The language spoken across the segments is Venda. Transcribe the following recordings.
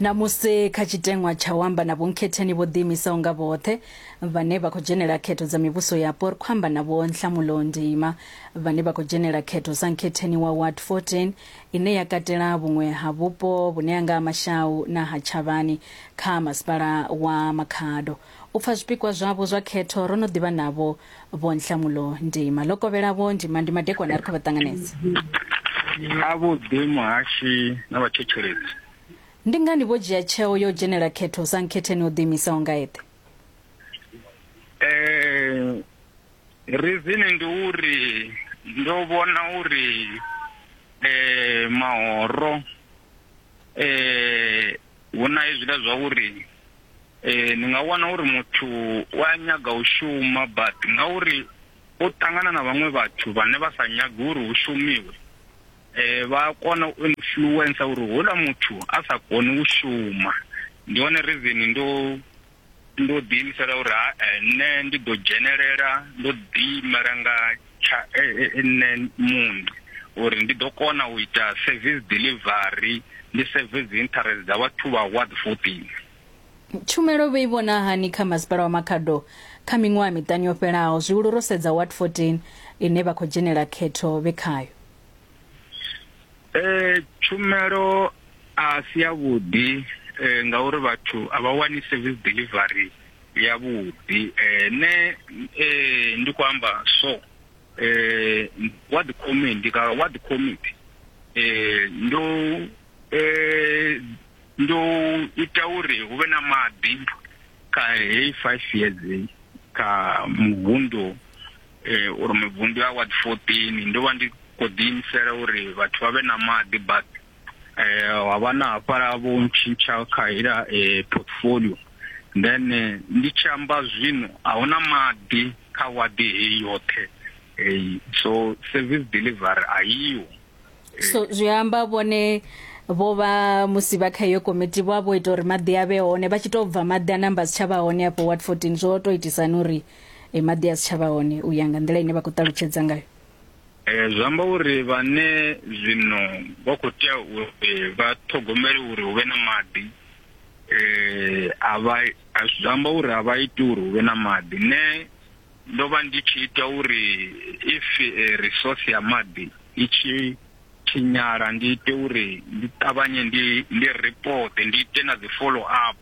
Ṋamusi kha tshiteṅwa tsha u amba na vhonkhetheni vho ḓiimisaho nga vhoṱhe vhane vha khou dzhenela khetho dza mivhuso yapo ri khou amba na Vho Nhlamulo Ndima vhane vha khou dzhenela khetho sa nkhetheni wa Ward 14 ine ya katela vhuṅwe ha vhupo vhune ha nga ha Mashau na ha Tshavhani kha masipala wa Makhado. U pfa zwipikwa zwavho zwa khetho ro no ḓi vha navho, Vho Nhlamulo Ndima. Ḽo kovhela Vho Ndima ndi madekwana ri khou vha ṱanganedza. Avhuḓi Muhashi na vhathetshelesi. Ndi ngani vho dzhia tsheo ya u dzhenela khetho sa nkhetheni o ḓiimisaho nga eṱhe? Rizini ndi uri ndo vhona uri mahoro Hu na hezwiḽa zwa uri ni nga wana uri muthu u a nyaga u shuma but ngauri o ṱangana na vhaṅwe vhathu vhane vha sa nyagi uri hu shumiwe vha a kona u influencer uri houḽa muthu a sa koni u shuma. Ndi yone reason ndo Ndo ḓiimisela uri ha nṋe ndi ḓo dzhenelela ndo ḓiimela nga tsha nṋe muṋe uri ndi ḓo kona u ita service delivery ndi service dzi interest dza vhathu vha ward 14. Tshumelo vho i vhona hani kha Masipala wa Makhado kha miṅwaha miṱanu yo fhelaho, zwihulu ro sedza ward 14 ine vha khou dzhenela khetho vhe khayo? eh tshumelo a si ya vhuḓi eh ngauri vhathu a vha wani service delivery ya vhuḓi eh ne eh ndi kho amba so eh what the committee ka what the committee eh ndo eh ndo ita uri hu vhe na maḓi kha heyi five years kha muvhundu uri mivhundu ya ward 14 ndo vha ndi khou ḓi imisela uri vhathu vha vhe na maḓi but ha vha na hafhaḽa vho ntshintsha kha heiḽa portfolio then ndi tshi amba zwino a hu na maḓi kha wadi heyi yoṱhe so service delivery a yiho so zwi amba vhone vho vha musi vha kha iyo komiti vho vha vho ita uri maḓi a vhe hone vha tshi tou bva maḓi a namba si tsha vha hone afho ward 14 zwo tou itisani uri e maḓi a si tsha vha hone u ya nga nḓila ine vha khou ṱalutshedza ngayo eh, zwi amba uri vhane zwino vha khou tea uri eh, vha ṱhogomele uri hu vhe na maḓi um a vha zwi amba uri a vha iti uri hu vhe na maḓi ne ndo vha ndi tshi ita uri if resource ya maḓi i tshi tshinyala ndi ite uri ndi ṱavhanye ndi ndi report ndi ite na dzi follow up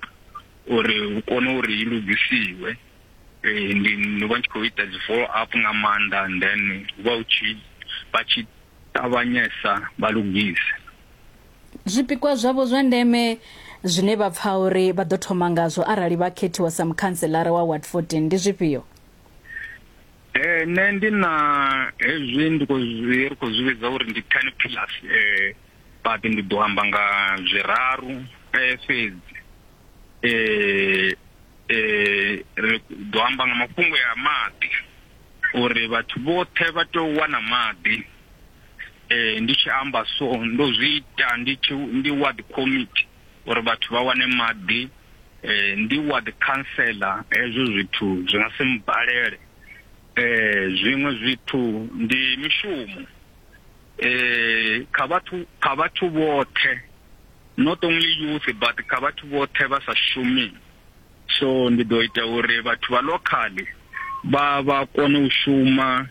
uri hu kone uri i lugisiwe Eh, ndi ndo vha tshi khou ita dzi follow up nga maanḓa and then vha u tshi vha tshi ṱavhanyesa vha lugise zwipikwa zwavho zwa ndeme zwine vha pfa uri vha ḓo thoma ngazwo arali vha khethiwa sa mukhanselara wa ward 14 ndi zwifhio eh nṋe ndi na hezwi ndi khou zwi ri khou zwi vhidza uri ndi ten plus eh but ndi ḓo amba nga zwiraru eh fhedzi eh eh ri ḓo amba nga mafhungo ya maḓi uri vhathu vhoṱhe vha tea u wana maḓi eh ndi tshi amba so ndo zwi ita ndi tshi ndi ward committee uri vhathu vha wane maḓi eh ndi ward councillor hezwo zwithu zwi nga si mbalele eh zwiṅwe zwithu ndi mishumo eh kha vhathu kha vhathu vhoṱhe not only youth but kha vhathu vhoṱhe vha sa shumi so ndi ḓo ita uri vhathu vha locally vha vha kone u shuma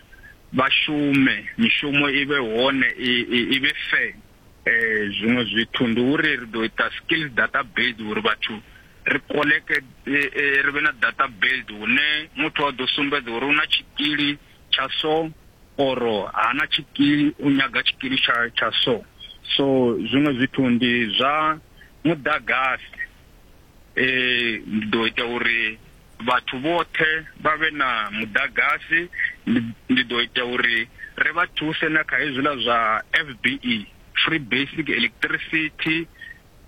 vha shume mishumo i vhe hone i vhe fair eh zwiṅwe zwithu ndi uri ri ḓo ita skills database uri vhathu ri koleke eh, eh, ri vhe na database hune muthu a ḓo sumbedza uri u na tshikili tsha so or hana tshikili u nyaga tshikili tsha tsha so so zwiṅwe zwithu ndi zwa muḓagasi eh ndi ḓo ita uri vhathu vhoṱhe vha vhe na muḓagasi ndi ḓo ita uri ri vha thuse na kha hezwiḽa zwa FBE free basic electricity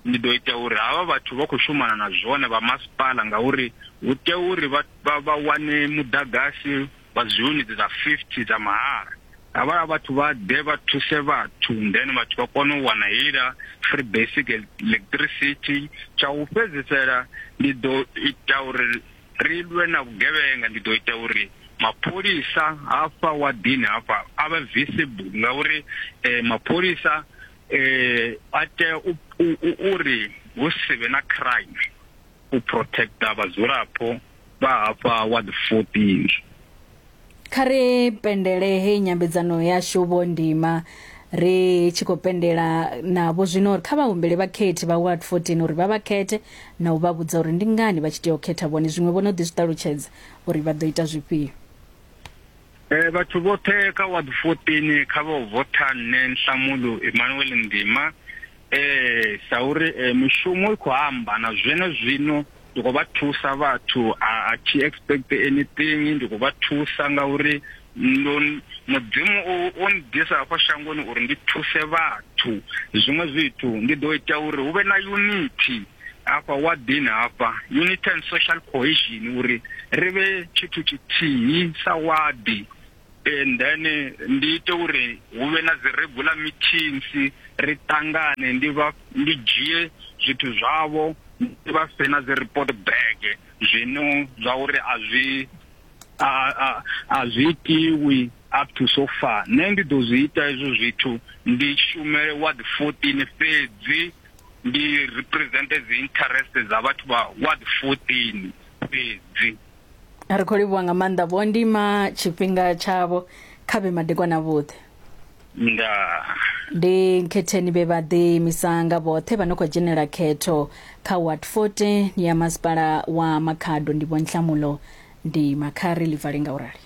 ndi ḓo ita uri havha vhathu vha khou shumana na zwone vha masipala ngauri hu tea uri vha vha wane muḓagasi wa dzi yunitsi dza 50 dza mahala havhala vhathu vha ḓe vha thuse vhathu then vhathu vha kone u wana heiḽa free basic electricity tsha u fhedzisela ndi ḓo ita uri ri lwe na vhugevhenga ndi ḓo ita uri mapholisa hafha wa dini hafha a vha visible ngauri eh, mapholisa eh a tea u uri hu si vhe na crime u protecta vhadzulapo vha hafha wa the 14 kha ri pendele he nyambedzano yashu vho ndima ri tshi khou pendela navho zwino uri kha vha humbele vhakhethi vha ward 14 uri vha vha khethe na u vha vhudza uri ndi ngani vha tshi tea u khetha vhone zwiṅwe vho no ḓi zwi ṱalutshedza uri vha ḓo ita zwifhio E, vhathu vhoṱhe kha ward 14 kha vha votha nṋe Nhlamulo Emmanuel Ndima eh sa uri eh, mishumo i khou amba na zwene zwino ndi khou vha thusa vhathu a a thi expect anything ndi khou vha thusa nga uri ndo mudzimu o o ndisa hafha shangoni uri ndi thuse vhathu zwiṅwe zwithu ndi ḓo ita uri hu vhe na unity hafha wa dini hafha unity and social cohesion uri ri vhe tshithu tshithihi sa wadi and then ndi ite uri hu vhe na dzi regular meetings ri tangane ndi vha ndi dzhie zwithu zwavho ndi vha fhe na dzi report bag zwino zwa uri a zwi a zwi itiwi up to so far nṋe ndi ḓo zwi ita hezwo zwithu ndi shumele ward 14 fhedzi ndi represente dzi interest dza vhathu vha ward 14 fhedzi ri khou livhuwa nga maanḓa vho ndima tshifhinga tshavho kha vhe madekwana vhuḓe nda ndi nkhetheni vhe vha ḓiimisa nga vhoṱhe vha no khou dzhenela khetho kha ward 14 ya masipala wa makhado ndi vho nhlamulo ndi makhari ḽi vale nga u rali